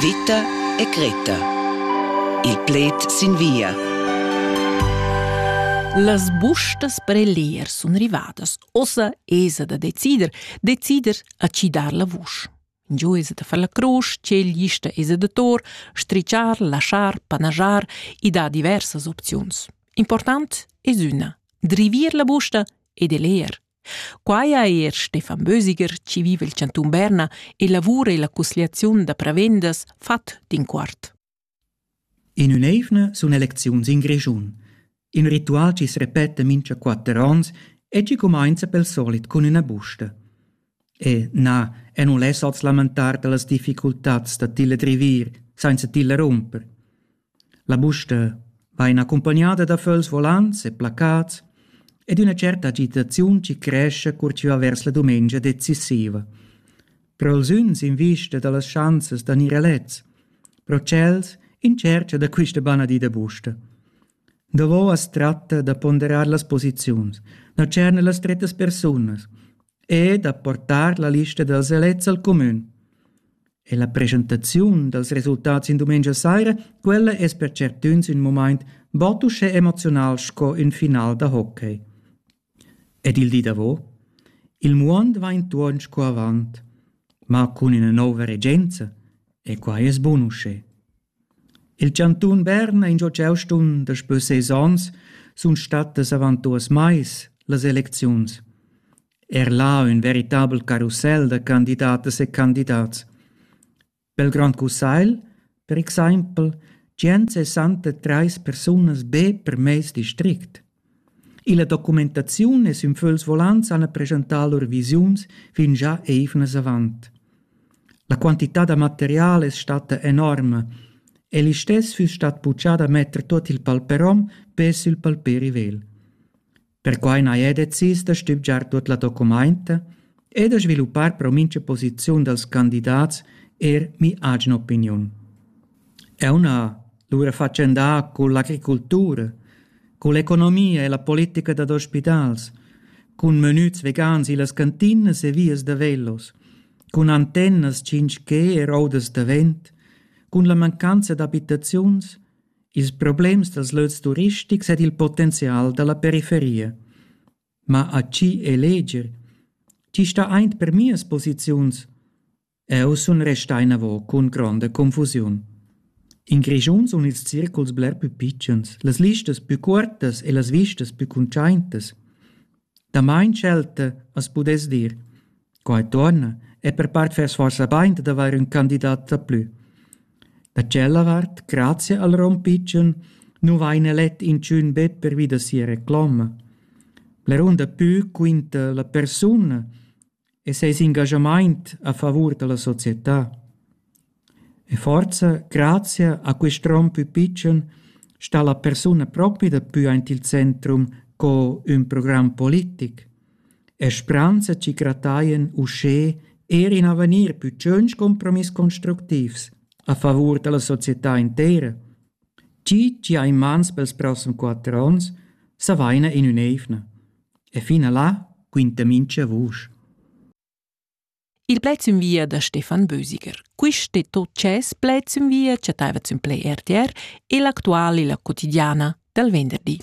Vita e Greta. Il pled sin via. Las bustas per elir sun rivadas. Ossa esa da decider, decider a ci dar la vusch. Giu esa da far la crusch, tgel gista esa da tor, strichar, laschar, panajar, i dà diversas opziuns. Important es üna, drivir la busta ed eler, Quai ha er Stefan Bösiger, chi viva il chantun Berna e lavura illa cusgliaziun da prevendas, fat d'inquart. In ün'eivna sun elecziuns in Grischun. In ritual chi repeta mincha quatter ons e chi cumainza pel solit cun üna busta. E na, e non less oz lamentar dellas difficultats da tilla drivir, sainza tilla rumper. La busta vain accumpagnada da föls volants e placats ed üna tscherta agitaziun chi crescha cur chi va vers la dumengia decisiva. Però els üns in vista da las schanzas da gnir elets, però tschels in tschercha da quista banadida busta. Davo as tratta da ponderar las posiziuns, da tscherner las strettas persunas, e da portar la lista dals elets al cumün. E la presentaziun dals resultats in dumengia saira, quella es per certüns ün moment bod uschè emoziunal sco ün final da hockey. Ed il di davo? Il muond va intuorn sco avant, ma cun üna nouva regenza, e quai es bun uschè. Il chantun Berna ha ingio ch'eu sun daspö ses ons sun stattas avant duos mais las elecziuns. Er là ün veritabel carussel da candidatas e candidats. Pel Grand Cussagl, per exaimpel, tschient sessanta trais persunas be per meis district. Illa documentaziun es ün fögls volants hana preschantà lur visiuns fingià eivnas avant. La quantità da material es statta enorma e listess füss stat puchà da metter tuot il palperom be sül palperi vegl. Perquai n'haja decis da stübgiar tuot la documainta e da sviluppar pro mincha posiziun dals candidats eir mi'agen opiniun. Eu n'ha lura fatschendà cun l'agricultura, cun l'economia e la politica dad ospitals, cun menüts vegans illas cantinas e vias da velos, cun antennas tschinch-ch er oudas da vent, cun la mancanza d'abitaziuns, ils problems dals lös turistics ed il potenzial da la periferia. Ma a chi eleger? Chi sta aint per mias posiziuns? Eu sun restà inavo cun gronda confusiun. In Grischun sun ils circuls bler pü pitschens, las listas pü cuortas e las vistas pü cuntschaintas. Damain schelta as pudess dir. Quai tuorna e per part fess forsa bain dad avair ün candidat daplü. Da tschella vart, grazia al rom pitschen, nu vaina let inchün be pervi da sia recloma. Blerun dapü quinta la persuna e seis engaschamaint a favur da la società. E forza, grazia a quist rom pü pitschen sta la persuna propi dapü aint il centrum co ün program politic. E spranza chi grattaien uschè eir in avegnir pü tschönch compromiss constructivs a favur da la società intera. Chi chi ha in mans pels prossem quatter ons, s'avaina in ün'eivna. E fina là quinta mincha vusch. Il pled sün via da Stefan Bösiger. Quist e tot dschess pled sün via chattaiva sün Play RTR e l'actual illa quotidiana dal venderdi.